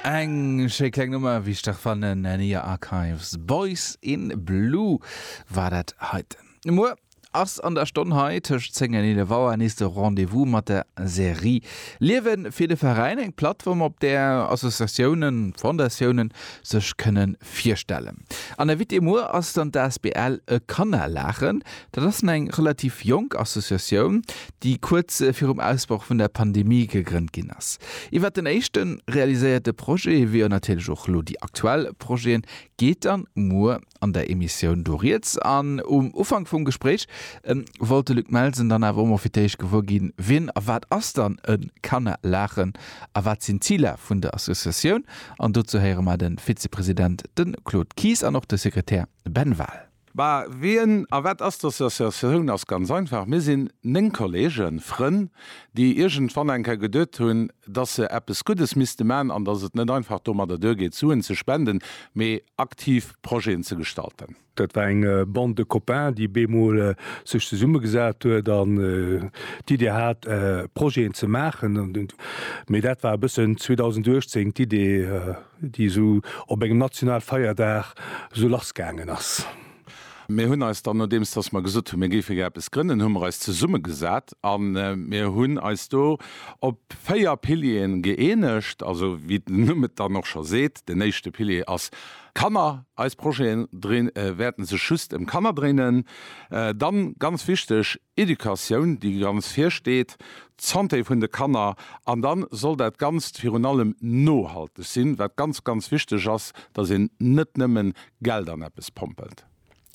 Eng schéi kleng Nummer, wéi ech dach fannen. Nenia Archives, Boys in Blue war dat heiten. Muer ass an der Stonn hei tëscht 10 an 11 Auer nees de Rendez-vous mat der Serie Liewe fir de Veräin, eng Plattform, op där Associatiounen, Fondatiounen sech kënne virstellen. An Invité muer ass dann d'asbl E Kannerlachen. Dat ass eng relativ jonk Associatioun, déi kuerz virum Ausbroch vun der Pandemie gegrënnt ginn ass. Iwwert den éischte realiséierte Projet, wéi och natierlech och elo déi aktuell Projeten, geet dann muer an der Emissioun do rieds. An um Ufank vum Gespréich wollt de Luc Melsen dann awer och mol fir d'éischt gewuer ginn, wien a wat ass dann e Kanner Laachen a wat sinn d'Ziler vun der Associatioun. An dozou héiere mer de Vizepresident, de Claude Kies an och de Sekretär Ben Wahl. Mä wien a wat ass d'Associatioun? Ass ganz einfach, Mir sinn 9 Kolleegen, Frënn, déi iergendwann eng Kéier geduet hunn, dass se eppes Guddes misste man an dass et net einfach domadder duergeet, Suen ze spenden, mee aktiv Projeten ze gestalten. Dat war eng Bande de copains, déi op eemol sech zesummegesat huet an d'Idee hat, Projeten ze maachen. Mee dat war e bëssen 2018 d'Idee. déi esou op engem national Feierdag esou lass gaangen ass. Mir hunn eis dann, nodeems datt mer gesot hunn, mir géife gär eppes grënnen, hu mer eis zesummegesat a mir hunn eis do op véier Pilieren gëeenegt. Also wéi den Numm et dann och scho seet, den éischte Pilier ass Kanner. Eis Projeten wäerten sech just ëm Kanner dréinen. Dann, ganz wichteg, Educatioun, déi ganz vir steet, d'Santé vun de Kanner, an da soll dat Ganzt virun allem nohalteg sinn, wat ganz, ganz wichteg ass, dass een net nëmmen Geld an eppes pompelt.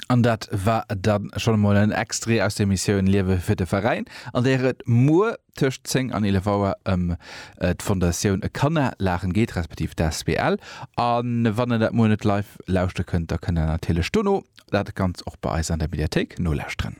An dat war da schonn emol en Extrait aus der Missioun Liewe fir de Veräin, an där et muer tëscht 10 an 11 Auer ëm d'Fondatioun E Kanna laachen geet, respektiv d'asbl. A wann der dat muer net live lauschte kënnt, da kënnt der natierlech dono dat Ganzt och bei eis an der Mediathéik nolauschteren.